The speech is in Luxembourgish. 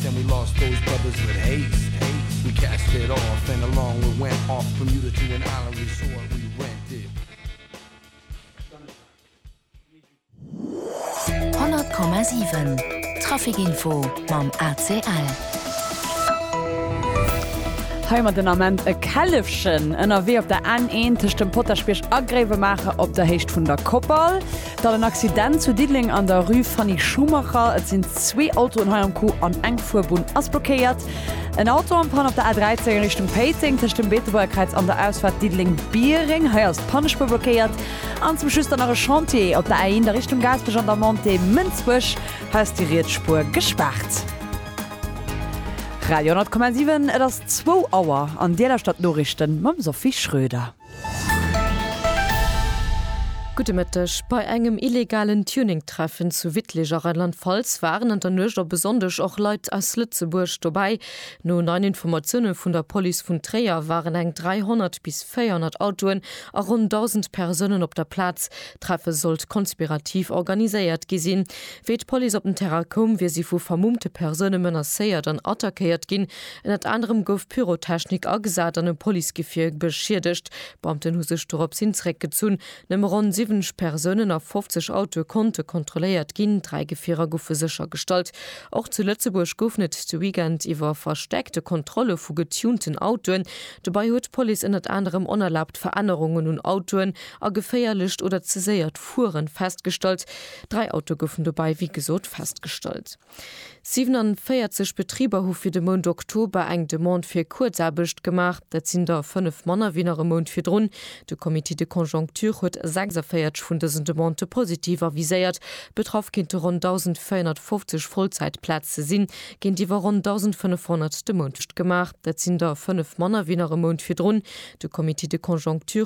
Then we lost those brothers with haste We cast it off and along we went Off Bermuda to an island resort we rented 100,7 Traficinfo mam ACL. Hei mat den Ament e Källefchen ënnerwee op der N1 tëscht dem Potaschbierg a Gréiwemaacher op der Héicht vun der Koppal. Dann en Accident zu Diddeleng an der Rue Fanny Schumacher. Et sinn zwee Autoen hei am Coup an eng Fuerbunn ass blockéiert. En Auto am Panne op der A13 a Richtung Péiteng tëscht dem Beetebuergkräiz an der Ausfaart Diddeleng-Biereng. Hei ass d'Pannespuer blockéiert. An zum Schluss dann nach e Chantier op der A1 a Richtung Gaasperech an der Montée Mënsbech. Hei ass déi riets Spuer gespaart. Radio 10,7, Et ass zwou Auer an Dir lauschtert d'Noriichten mam Sophie Schröder. Gudde Mëtteg. Bei engem illegalen Tuning-Treffen zu Wittlich a Rheinland-Pfalz waren an der Nuecht op e Sonndeg och Leit aus Lëtzebuerg dobäi. No neien Informatioune vun der Police vun Tréier waren eng 300 bis 400 Autoen a ronn 1.000 Persounen op der Plaz. D'Treffe sollt konspirativ organiséiert gi sinn. Wéi d'Police op den Terrain koum, wier si vu vermummte Persoune menacéiert an attackéiert ginn, Ënnert anerem gouf Pyrotechnik agesat an e Policegefier beschiedegt. D'Beamten hu sech dorops hin zeréckgezunn. Nëmme ronn 70 Persounen a 50 Autoe konnte kontrolléiert ginn. Dräi Gefierer goufe séchergestallt. Och zu Lëtzebuerg goufen et de Weekend iwwer verstäerkte Kontrolle vu getunten Autoen. Dobäi huet d'Police ënnert anerem onerlaabt Verännerungen un Autoen a geféierlecht oder ze séiert Fueren festgestallt. Dräi Autoe goufen dobäi wéi gesot festgestallt. 47 Betriber hu fir de Mount Oktober eng Demande fir Kuerzaarbecht gemaach. Dat sinn der fënnef manner wéi nach e Mount virdrun. De Comité de conjoncture huet 46 vun dësen Demandë positiv aviséiert. Betraff kéinte ronn 1.450 Vollzäitplaze sinn, géintiwwer ronn 1.500 de Mount gemaach. Dat sinn der fënnef manner wéi nach e Mount virdrun. De Comité de conjoncture.